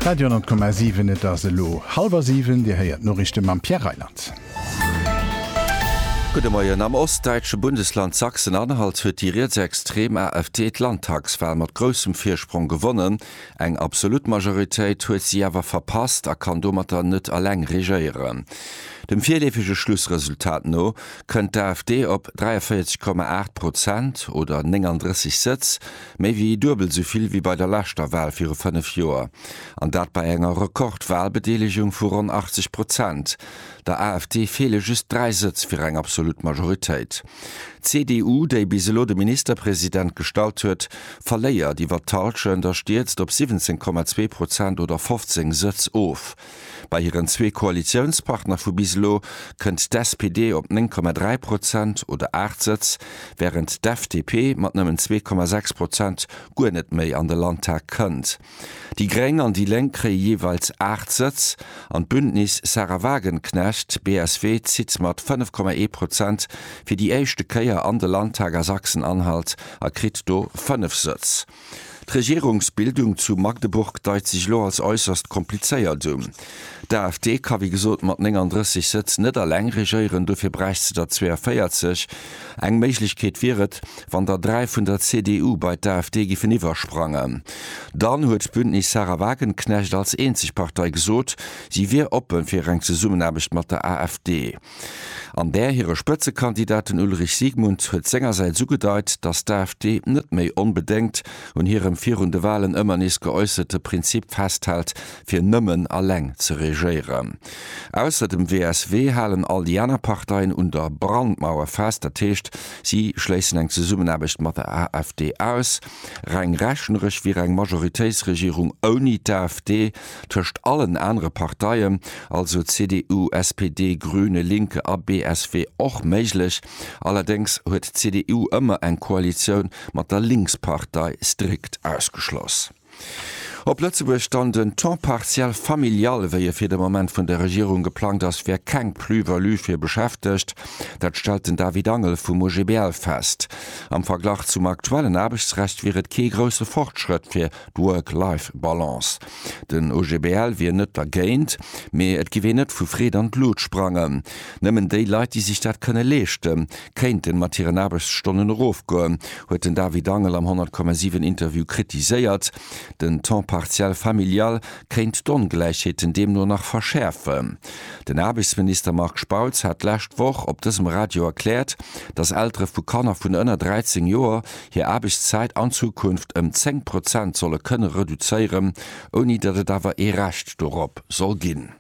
Radio 10,7 Et ass elo hallwer siwen. Dir héiert d'Noriichte mam Pierre Reyland. Gudde Moien. Am ostdäitsche Bundesland Sachsen-Anhalt huet déi rietsextrem AfD d'Landtagswal mat groussem Virsprong gewonnen. Eng absolut Majoritéit huet si awer verpasst a kann domatter net eleng regéieren. Dem virleefege Schlussresultat no kënnt d'AfD op 43,8 Prozent oder 39 Sëtz, Méi wéi duebel esou vill wéi bei der leschter Wal viru fënnef Joer. An dat bei enger Rekord-Walbedeelegung vu ronn 80 Prozent. Der AfD feele just dräi Sëtz fir eng absolut Majoritéit. D'CDU, déi bis elo de Ministerpresident gestallt huet, verléiert iwwer d'Hallschent a stierzt op 17,2 Prozent oder 15 Sëtz of. Bei hiren zwee Koalitiounspartner vu bis elo kënnt d'SPD op 9,3 Prozent oder 8 Sëtz, wärend d'FDP mat nëmmen 2,6 Prozent guer net méi an de Landtag kënnt. Déi Gréng an déi Lénk kréie jeeweils 8 Sëtz an d'Bündnis Sahra Wagenknecht, BSW, zitt mat 5,1 Prozent fir déi éischte Kéier an de Landtag a Sachsen-Anhalt a kritt do 5 Sëtz. D'Regierungsbildung zu Magdeburg deit sech elo als äusserst komplizéiert un. D'AfD ka wéi gesot mat 39 Sëtz net alleng regéieren, dofir bräicht se der 42. Eng Méiglechkeet wier et, wann der dräi vun der CDU bei d'AfD giffen iwwersprangen. Dann huet d'Bündnis Sahra Wagenknecht als eenzeg Partei gesot, si wier oppe fir eng Zesummenaarbecht mat der AfD. An där hire Spëtzekandidate, den Ulrich Siegmund, huet sengersäits ugedeit, datt d'AfD net méi onbedéngt un hirem virun de Walen ëmmer nees geäusserte Prinzip festhält, fir nëmmen alleng ze regéieren. Ausser dem WSW halen all déi aner Parteien un der Brandmauer fest, dat heescht, si schléissen eng Zesummenaarbecht mat der AfD aus. Reng rechneresch wier eng Majoritéitsregierung ouni d'AfD tëscht allen anere Parteien, also CDU, SPD, Grüne, Linke a BSW, och méiglech. Allerdéngs huet d'CDU ëmmer eng Koalitioun mat der Linkspartei strikt ausgeschloss. Op Lëtzebuerg dann, Den Temps partiel familial, wéi e fir de Moment vun der Regierung geplangt ass, wär keng Plus-value fir Beschäftegt. Dat stellt den David Angel vum OGBL fest. Am Verglach zum aktuellen Aarbechtsrecht wier et kee grousse Fortschrëtt fir D'Work-Life-Balance, Den OGBL wier net dergéint, mee et giff een net vu Freed an d'Lut sprangen. Nëmmen déi Leit, déi sech dat kënne leeschte kéinte mat hiren Aarbechtsstonnen erofgoen, huet den David Angel am 100,7 Interview kritiséiert. Den Temps partiel familial kéint d'Ongläichheeten deemno nach verschäerfen. Den Aarbechtsminister Marc Spautz hat d'lescht Woch op dësem Radio erkläert, datt Eltere vu Kanner vun ënner 13 Joer, hir Aarbechtszäit an Zukunft ëm 10 Prozent solle kënne reduzéieren, ouni datt et awer ee Recht dorop soll ginn.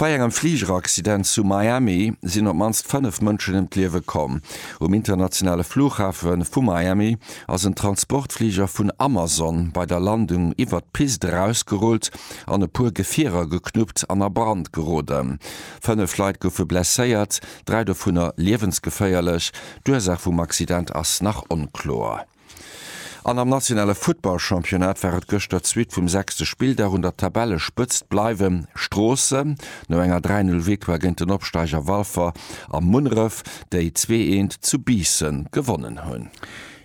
Bei engem Fligeraccident zu Miami sinn op d'mannst 5 Mënschen ëm d'Liewe komm. Um internationale Flughafe vu Miami ass en Transportfliger vun Amazon bei der Landung iwwert d'Pist erausgerullt an e puer Gefierer geknuppt an a Brand geroden. Fënnef Leit goufe blesséiert, dräi dovunner liewensgeféierlech, D'Ursaach vum Accident ass nach onkloer. An am nationale Futtballchampionnat war et gëschter d'Suite vum sechste Spilldag. Un der Tabellespëtzt bleiwe Stroossen no enger 3, 0 Victoire géint den Opsteiger Walfer a Munneref, déi zwee eent zu Biissen gewonnen hunn.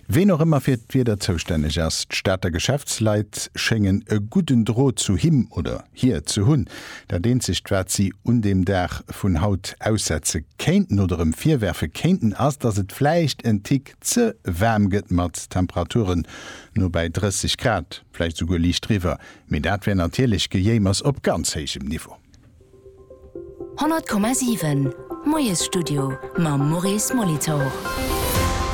Ween och ëmmer fir d'Wieder zoustänneg ass, d'Stater Geschäftsleit schéngen e gudden Drot zu him oder hir ze hunn. Dat eenzegt wat si un deem Dag vun haut aussetze kéinten oder em virwerfe kéinten ass, dass et vläicht en Tick ze waarm gëtt mat Temperaturen no bäi 30 Grad, vläicht esouguer liicht driwwer, mee dat wär natierlech Gejéimers op ganz héijem Niveau. 100,7 Moiesstudio mam Maurice Molitor.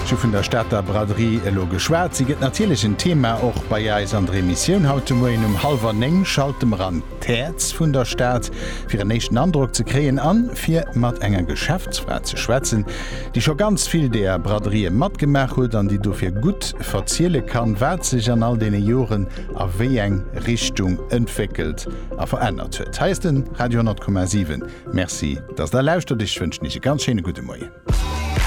Ech hu vun der Stater Braderie elo geschwat. Si gëtt natierlech en Thema och bei eis an der Emissioun. Haut de Moien um hallwer néng schalte mer an. d'Häerz vun der Stad, fir en éischten Androck ze kréien an fir mat enger Geschäftsfra ze schwätzen, déi scho ganz vill deeër Braderien matgemaach huet an déi dofir gutt verzielen kann, wat sech an all deene Joren a wéi eng Richtung entwéckelt a verännert huet. Hei ass den Radio 10,7. Merci, dass der lauschtert. Ech wënschen iech e ganz schéine gudde Moien.